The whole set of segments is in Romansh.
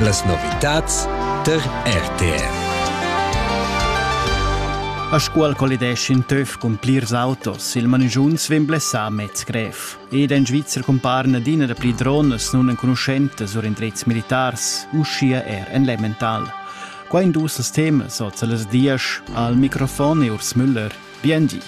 Las novitads tar RTR. A Scuol collideschin töf cun plirs autos. Il manigiunz vegn blessà mez grev. Ed ein Schweizer cumparen adina da pli dronas non enconuschentas sur indrezs militars, uschia er en Lemmental. Qua in dus temas, oz las dias, al microfon e Urs Müller. Bien di.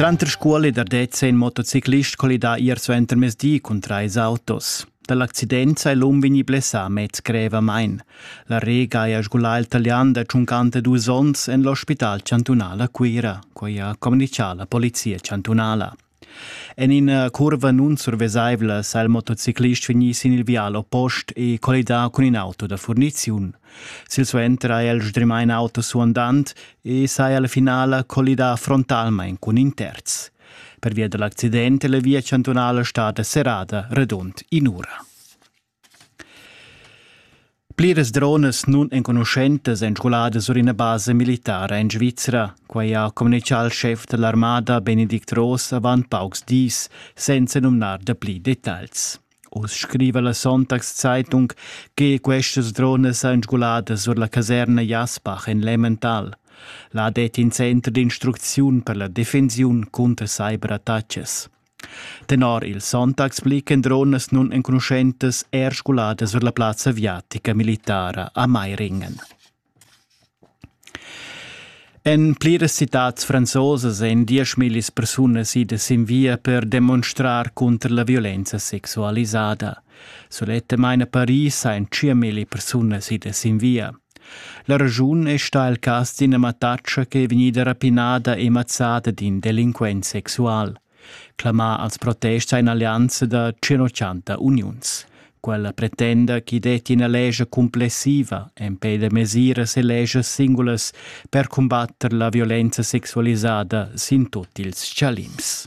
Tranter scuol e dardez è in motociclist colidà ier suenter mesdi cun trais autos. Dall'accident sei l'um vegni blessà mez grevamain. La Rega ha sgulà il talian da tschuncanter dus onns en l'ospital chantunal a Cuira, quai ha communicà la polizia chantunala. En ina curva nun survesaivla sa il motociclist vegnir sin il vial oppost e collidar cun in auto da furniziun. Silsuenter ha el sdrimà in auto suandant e saja la finala collidà frontalmain cun in terz. Pervia da l'accident è la via chantunala stada serrada radund in'ura. Pliras dronas nunenconuschentas èn sguladas sur ina basa militara en Svizra. Quai ha communitgà il schef da l'armada Benedikt Ross avant paucs dis, senza numnar dapli detagls. Uss scriva la Sonntagszeitung che questas dronas èn sguladas sur la caserna Jasbach en Lemmental. Là det in center d'instrucziun per la defensiun cunter cyberattacas. Tenor il Sonntagsblick endron las nun enconuschentas er scoladas vers la plazza aviatica militara a Meiringen. En pliras citads franzosas èn dieschmillis persunas idas sin via per demonstrar cunter la violenza sexualisada. Sulettamain a Paris ein 5.000 persunas idas sin via. La raschun è stà il cas d'ina mattatscha che è vegnida rapinada e mazzada d'in delinquent sexual. Clamà als protests ha in'allianza da 180 uniuns. Quella pretenda ch'i detti ina lescha cumplessiva empè da mesiras e leschas singulas per cumbatter la violenza sexualisada sin tut ils chalims.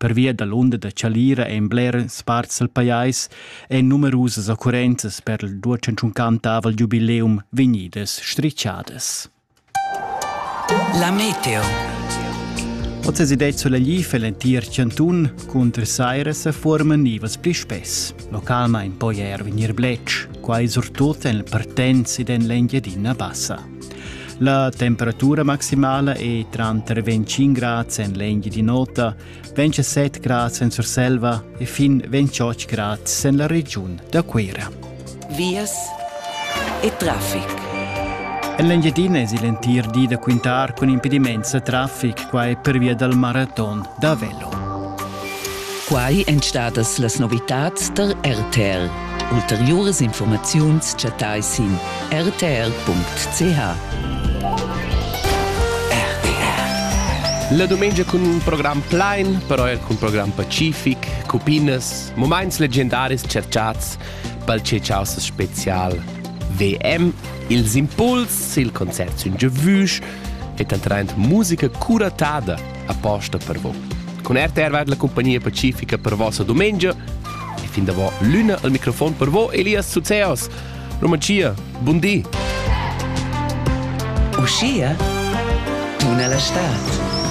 Pervia dall'unda da chalira ein bleras parts dal pajais ein numerusas occurrenzas per il duatschantuncantavel giubileum vegnidas strischadas. La meteo. Oz es idee sulla glifa l'entir chantun cunter saira sa forma nivas pli spess. Localmain poi er vegnir bletsch, quai surtut en partenz ed en l'Engiadina Bassa. La temperatura maximala è tranter 25 grads en l'Engi di Nota, 27 grads en Surselva e fin 28 grads en la regiun da Cuira. Vias e traffic. En l'Engiadina è il entir di da quintar cun impediments a traffic, quai per via dal maraton da Vel. Quai èn stadas las novitads tar RTR. Ulteriuras informaziuns chattai sin rtr.ch. La dumengia cun un program plain, però er cun program pacific, cupinas, moments legendaris cerchats pel Cecausa special VM, ils impuls, il concert sün giavüsch e tantraint musica curatada aposta per voi. Con RTR va la compagnia pacifica per vossa domenica e fin da vo l'una al microfon per voi Elias Suzeos. Romancia, bun di. Uscia tuna la stad.